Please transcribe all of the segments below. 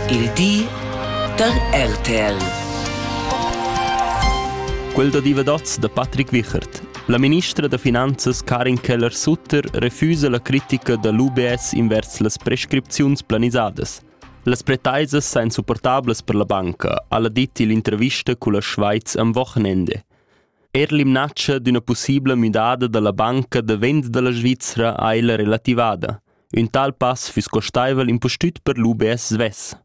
Il di da RTL. Quel da divadats da Patrick Wichert. La ministra da finanzas Karin Keller-Sutter refusa la critica da l'UBS invers las prescripziuns planisadas. Las pretaisas sain supportablas per la banca, ha la dit l'intervista culla Schweiz am Wochenende. Er l'imnaccia d'üna possibla müdada da la banca da vend da la Svizzera ha ella relativada. Ün tal pass füss costaivel impustüt per l'UBS svess.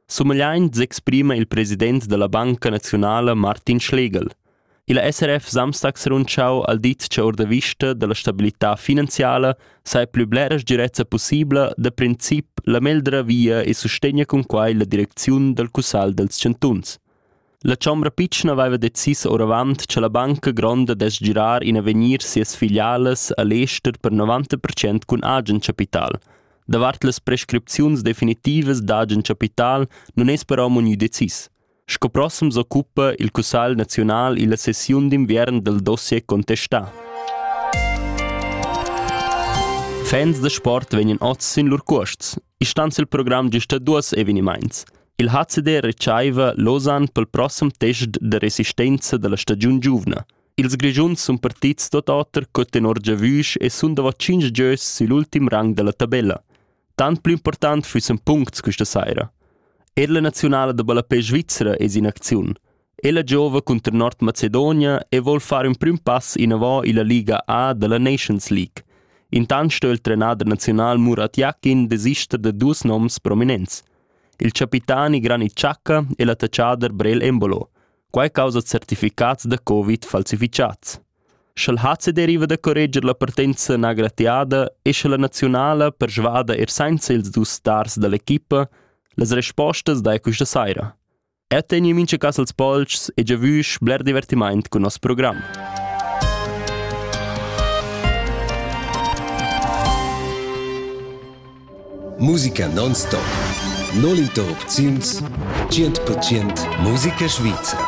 Sumegliaint s'exprima il president da la Banca naziunala Martin Schlegel. Il SRF Samstag s'è rundschau al dit cha our da vista da la stabilità finanziala saja plü blera sgirezza pussibla da princip la meglra via e sustegna cun quai la direcziun dal cussagl dals chantuns. La chombra pitschna veva decis oravant cha la banca gronda dess girar in avegnir sias filialas a l'ester per 90 percent cun agen chapital. Davart las prescripziuns definitivas d'agen chapital nun es però munü decis. Sco prossem s'occupa il Cussagl naziunal illa sessiun d'inviern dal dossier contestà. Fans da sport vegnan oz sin lur cuosts. I stanz il program gista duos evenimaints. Il hazeder retschaiva Lausanne pel prossem test da resistenza da la stagiun giuvna. Ils Grischuns sun partits tuot oter co tenor giavüsch e sun davo tschinch gieus sül ultim rang da la tabella. Tant plü important füssen puncts questa saira. Er la naziunala da ballapè svizra es in acziun. E la giova cunter Nordmacedonia e vol far ün prüm pass inavò illa Liga A dalla Nations League. Intant sto il trenader naziunal Murat Yakin desister da duos noms prominents. Il capitani Granit Xhaka e l'attacchader Brel Embolo. Quai causa certificats da Covid falsifichats. Sch'el hat se deriva da correger la partenza nagratiada e sche la nazionala persvada er senza ils dus stars dall'equipa, las respostas dai questa saira. Er tegniu mincha cas els polcs e giavüsch bler divertimaint cun nos program. Musica non-stop. Non interrupziuns 100% musica svizra.